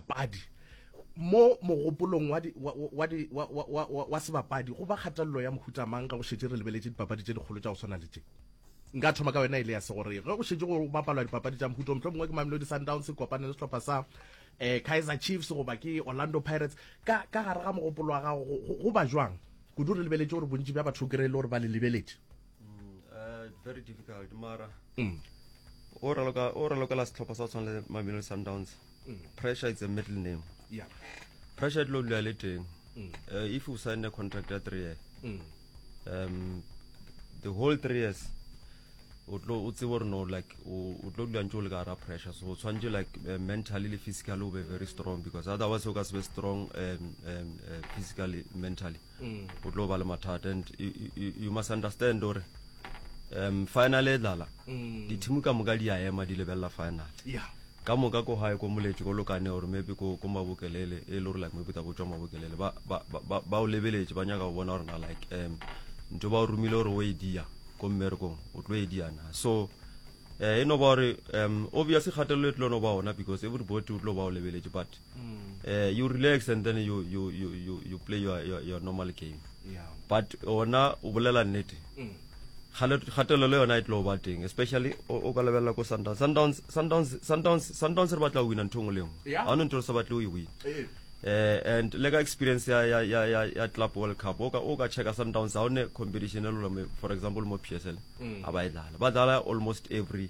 Padi. Mo mogopolong wa, di, wa, wa, di, wa, wa, wa, wa, wa sebapadi go ba kgatelelo ya mohuta mang ge go šetše re lebeletše dipapadi tše dikgolo tša go swana le tše? Nka thoma ka yona e le ya segoreng. Ge go šetše go bapalwa dipapadi tša mohuta o mohlomongwe ke Mamelodi Sundowns e kopane le sehlopha sa eh, Kaizer Chiefs goba ke Orlando Pirates, ka, ka gare ga mogopolo wa gago go, go, go ba jwang? Kudu re lebeletše gore bontši bja batho o kry-e le gore ba le lebeletše. Mm, uh, very difficult, mara. Mm. O raloka, o raloka la sehlopha sa go tshwana le Mamelodi Sundowns. mm. pressure it's a middle name yeah. pressure e tlo dula le teng mm. uh, if you sign a contract ya three year mm. um, the whole three years o tlo o tsebe gore no like o tlo dula ntse o le ka gara pressure so o tshwanetse like uh, mentally le physically o be very strong because otherwise o ka se be strong um, um, uh, physically mentally mm. o tlo ba le mathata and you must understand gore um final e dlala mm. dithimu ka moka di a ema di lebelela final yeah ka moka ko gae ko moletše ko lokane gore maybe ko ko mabokelele e le gore like maybe tabo tswa mabokelele ba ba ba ba o lebeletše ba nyaka go bona gore na like um ntho ba o romile gore o e dia ko mmerekong o tlo e dia na so eh e no ba gore um obvious kgatelelo e tlo no ba ona because everybody o tlo ba o lebeletše but uh, you relax and then you, you, you, you, you play your, your, your normal game yeah. but ona o bolela nnete mm. gatelelo yona e tlo ba teng especially o ka lebelela ko sundowns sundowns sundowns sundowns sundowns re batla o wina ntho e ngwe le ngwe ga one ntho re sa batle o e win eh. eh and le ka experience ya ya ya ya ya club world cup o ka o ka checka sundowns ha one competition e lolo for example mo PSL mm. a ba e dlala ba dlala almost every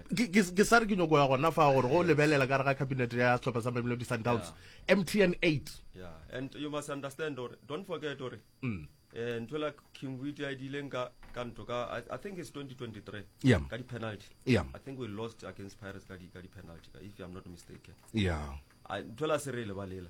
ke sa re ke nyoko ya gona fa gore go lebelela ka re ga cabinet ya setlhopha sa mamelodi sundowns mtn 8 and you must understand or don't forget or mm. eh, ntho la king wit a dileng ka ka ntho ka i think it's 2023 yeah. ka di-penalty yeah. i think we lost against pirates ka di-penalty if i'm not mistaken yeah. ntho la se re e lebalela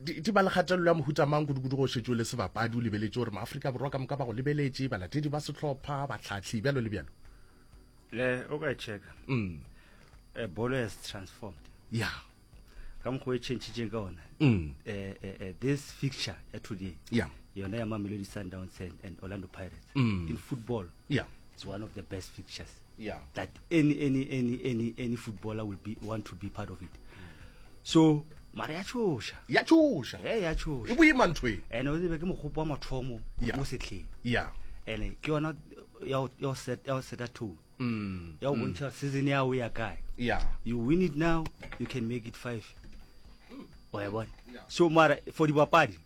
di, di ba le kgatelelo ya mohuta mang kudu-kudu go šetšo le sebapadi o lebeletše gore maaforika borwa ka moka ba go lebeletše balatedi ba sehlopha batlhatlhi bjalo le bjalo le o ka checka mm. Eh, bolo has transformed ya yeah. ka mokgwa e changitšeng ka ona mm. eh, eh, eh, this fixture ya today yeah. yona ya mamelodi sundowns and, and orlando pirates mm. in football yeah. it's one of the best fixtures yeah. that any any any any any footballer will be want to be part of it so mara ya tshoša ya tshoša e ya tshoša e boima ntho e ene o tsebe ke mogopo wa mathomo mo setlheng ya ene ke yona ya o set ya o seta tone mm. ya o mm. bontšha season ya o ya kae ya you win it now you can make it five o ya bona so mara for dibapadi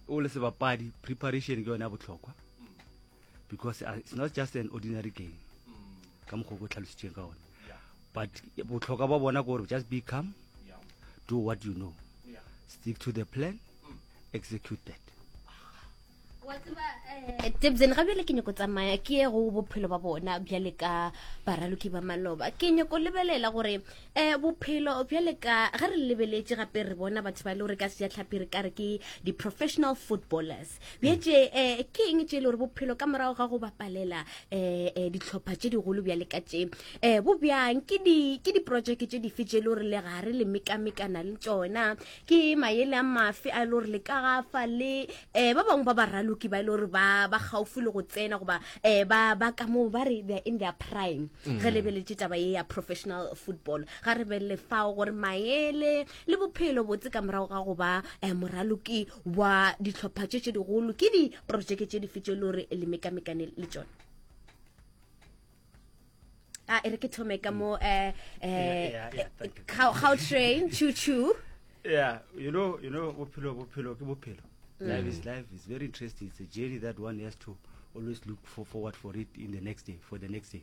o le sebapadi preparation ke yone ya botlhokwa because uh, it's not just an ordinary game ka mokgwa ko tlhalositseng ka one but botlhokwa ba bona gore just be calm do what you know stick to the plan mm. execute that eh, tebzen ga bjale ke nyako tsamaya ke ye go bophelo ba bona bjale ka baraloki ba maloba ke nyako lebelela gore um bophelo bjale ka ge re lebeletse gape re bona batho ba e le gore ka sejatlhapi re kare ke di-professional footballers bjetse um eh, ke eng tse e le gore bophelo ka morago ga go bapalela um ditlhopha tse digolo bja le ka tse um eh, bo bjang ke diprojeke tse dife tse e le gore le gare le mekamekana le tsona ke mayele a mafe a e le gore le ka gafa le um ba bangwe ba baraloki ba e le gore ba gaufi le go tsena goba um ba ka moo ba re they're in their prime mm. re lebeletse taba ye ya professional football ga re belele fao gore mayele le bophelo botse ka morago ga go ba um moraloki wa dihlopha tše tše digolo ke diprojeke tše dife tše le gore le mekamekane le tsone a ah, e re ke thome ka mo um gautrain chu chu yeah you know you know bophelo bophelo ke bophelo mm. life is life is very interesting it's a journey that one has to always look for forward for it in the next day for the next day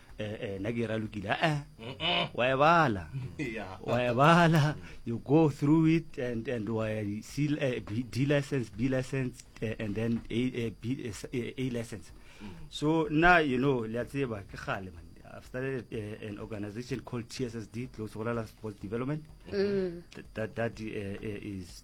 Eh, eh, nna ke ralokile ee eh, wa e bala wa e bala you go through it and and wa d license b license and then a license so nna you know le a tseba ke gale man I've started uh, an organization called TSSD, Close Sokola Sports Development. Mm. That, that, that uh, is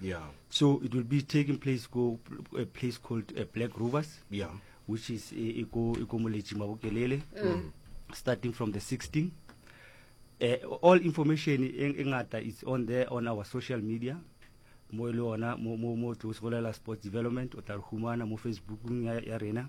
Yeah. So it will be taking place go a place called uh, Black Rovers. Yeah. Which is Iko Iko Mulechi Mabukelele. Mm. Starting from the 16. Uh, eh, all information in Ingata is on there on our social media. Mo e le ona mo mo mo tlo sports development o tla re mo Facebook ya, ya rena.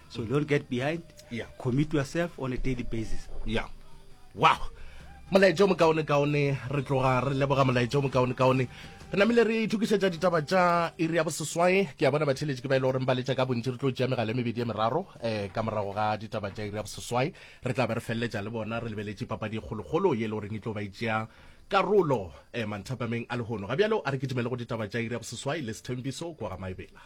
so don't get behind yeah. commit yourself on a daily basis yeah wow molaetša o mokaone-kaone re tloga re leboga molaetša o mokaone-kaone re namile re ithokišetša ditaba tša iri ya boseswai ke a bona batheletši ke ba e le goreng ba letša ka bontši re tlo tšea megala e mebedi ya meraro um ka morago ga ditaba tša iri ya boseswai re tla be re feleletša le bona re lebeletše papadi e kgolokgolo ye e le goreng e tlo ba e tšea karolo um eh, manthapameng a lehono ga bjalo a re ke dumele go ditaba tša iri ya boseswai le sethembiso kwa ga maebela